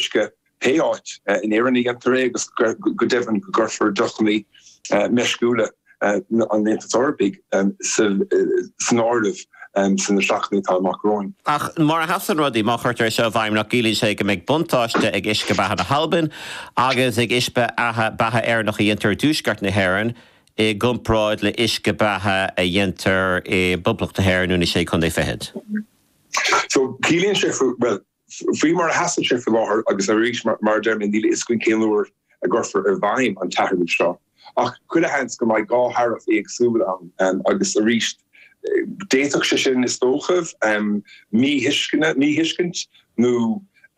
uisce pé áit in Éirinn a dhéantar é agus go deimhin go gcuirfear deochannaí meisciúla an Aontais Eorpaigh san áireamh sna seachtainí atá amach romhainn. Ach mar a sheasann rudaí, má chuirtear é seo i bhfeidhm, nach gciallaíonn sé go mbeidh buntáiste ag uisce beatha na hAlbain agus ag uisce beatha Éireannach a dhéantar i dtuaisceart na hÉireann i gcomparáid le huisce beatha a dhéantar i bPoblacht na hÉireann nó na Sé Chondae Fichead? Ciallaíonn sé, bhuel, Faoi mar a sheasann sé faoi láthair, agus arís mar a deir mé, níl a fhios againn cén uair a gcuirfear i bhfeidhm an t-athrú seo, ach chuile sheans go mbeidh dhá tharaif éagsúla ann agus arís d'fhéadfadh sé sin, is dócha, míthuisceana, míthuiscint nó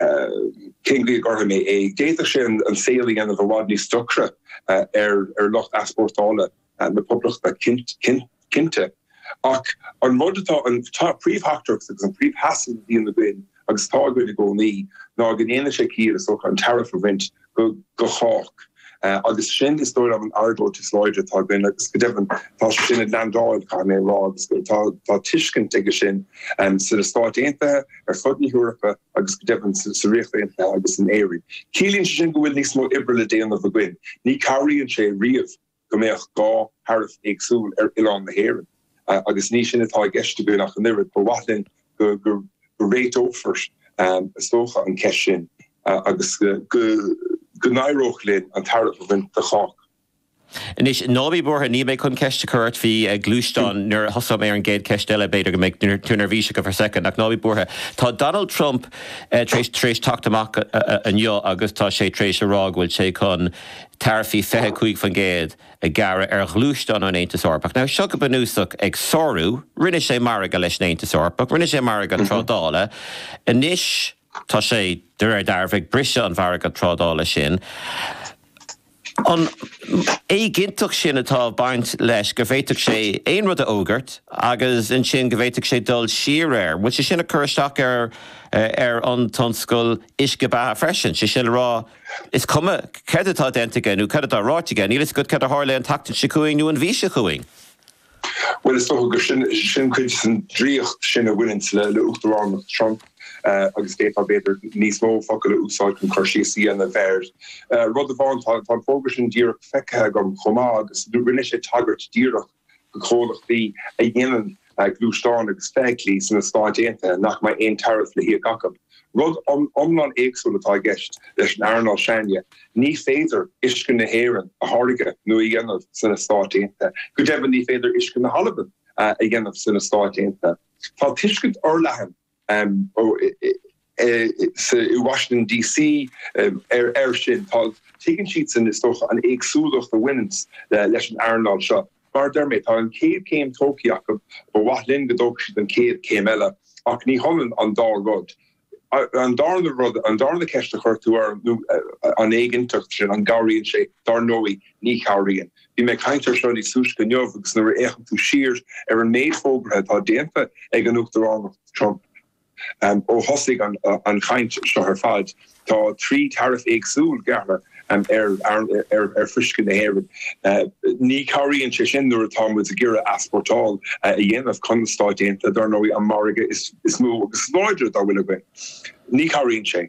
cén chaoi a gcuirfidh mé é? d'fhéadfadh sé an saol a dhéanamh i bhfad níos deacra ar lucht easpórtála. na Poblachta, cinnte, ach an rud atá an príomhtheachtaireacht agus an príomhsheasamh a bhíonn againn agus atá againn i gcónaí ná go ndéanann sé ciall, is dócha, an taraif a bhaint do chách. Agus sin, is dóigh liom, an argóint is láidre atá againn agus, go deimhin, tá sé sin ag leandáil, caithfidh mé a rá, agus tá tuiscint aige sin sna Stáit Aontaithe, ar fud na hEorpa agus, go deimhin, sa Ríocht Aontaithe agus in Éirinn. Ciallaíonn sé sin go bhfuil níos mó oibre le déanamh againn. Ní chabhraíonn sé riamh go mbeadh dhá tharaif éagsúil ar oileán na hÉireann agus ní sin atá i gceist againn ach an oiread. Ba mhaith linn go réiteofar, is dócha, an cheist sin agus go n-éireodh linn an taraif a bhaint de chách. Anois, ná bí buartha, níl mé chun ceist a chur ort, faoi ghluaisteáin nuair a thosaigh mé ar an gcéad cheist eile, b'fhéidir go mbeidh tú neirbhíseach go fóill for second, ach ná bí buartha. Tá Donald Trump tar éis teacht amach inniu agus tá sé tar éis a rá go bhfuil sé chun, taraifí 25% a ghearradh ar ghluaisteáin ón Aontas Eorpach. Now, seo go bunúsach ag sárú, rinne sé margadh leis an Aontas Eorpach, rinne sé margadh trádála, anois tá sé, de réir dealraimh, ag briseadh an mhargadh trádála sin. An éiginnteacht sin atá ag baint leis, go bhféadfadh sé aon rud a fhógairt agus ansin go bhféadfadh sé dul siar air, an bhfuil sé sin ag cur isteach ar an tionscal uisce beatha freisin, sé sin le rá, Is cuma céard atá déanta aige nó céard atá ráite aige, níl a fhios agat céard a tharlóidh an tseachtain seo chugainn nó an mhí seo chugainn. Bhuel, is dócha gur sin cuid den draíocht sin a bhaineann le le uachtaránacht Trump agus d'fhéadfá b'fhéidir níos mó focail a úsáid chun cur síos a dhéanamh air. Rud amháin, tá, tá an fógra sin díreach feicthe agam chomh maith agus rinne sé tagairt díreach do chomhlachtaí a dhéanann gluaisteáin agus feithiclí sna Stáit Aontaithe nach mbeidh aon taraif le híoc acu. Rud iomlán éagsúil atá i gceist leis an earnáil s'againne, ní féidir fuisce na hÉireann a tháirgeadh nó a dhéanamh sna Stáit Aontaithe, go deimhin ní féidir fuisce na hAlban a dhéanamh sna Stáit Aontaithe. Tá tuiscint fhorleathan i Washington DC ar air sin. Tuigeann siadsan is dócha an éagsúlacht a bhaineanns leis an earnáil seo. Mar a deir mé, tá an chéad chéim tógthaí acu, ba mhaith linn go dtógfadh siad an chéad chéim eile. Ach ní hionann an dá rud. An darna rud, an darna ceist a chuir tú orm ná an éiginnteacht sin, an gcabhraíonn sé, dar ndóigh ní chabhraíonn. Bhí mé ag caint ar seo níos túisce inniu agus nuair a fhéachann tú siar ar an méid fógartha atá déanta ag an Uachtaránacht Trump ó thosaigh an chaint seo ar fad, tá trí taraif éagsúil gearrtha ar fhuisce na hÉireann. Ní chabhraíonn sé sin nuair atá muid ag iarraidh easpórtáil a dhéanamh chun na Stáit Aontaithe, dar ndóigh, an margadh is mó agus is láidre dá bhfuil againn. Ní chabhraíonn sé.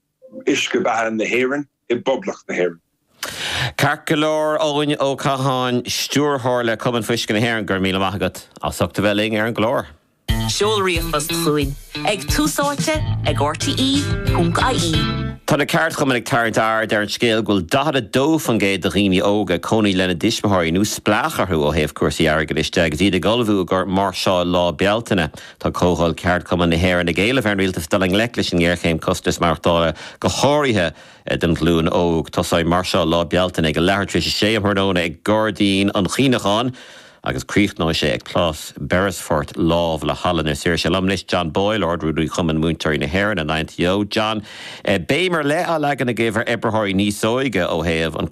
uisce beatha na hÉireann i bPoblacht na hÉireann. Ceart go leor, Eoin Ó Catháin, Stiúrthóir le Cumann Fuisce na hÉireann, go raibh míle maith agat as ucht a bheith linn ar an gclár. Seol ríomhphost chugainn ag, tús áite ag, rte.ie. Tá na ceardchumainn ag tarraingt aird ar an scéal go bhfuil 42% de dhaoine óga ag cónaí lena dtuismitheoirí nó spleách orthu ó thaobh cúrsaí airgeadais de agus iad ag ullmhú i gcomhair máirseáil Lá Bealtaine. Tá Comhdháil Ceardchumann na hÉireann ag éileamh ar an Rialtas dul i ngleic leis an ngéarchéim costais maireachtála, go háirithe don ghlúin óg. Tosóidh Máirseáil Lá Bealtaine ag a leathuair tar éis a sé um thráthnóna ag Gairdín an Chuimhneacháin agus críochnóidh sé ag Plás Beresford lámh le Halla na Saoirse. Liom anois, John Boyle, Ard-Rúnaí Chumann Múinteoirí na hÉireann, an INTO. John, beidh béim ar leith á leagan agaibh ar oibritheoirí níos óige ó thaobh an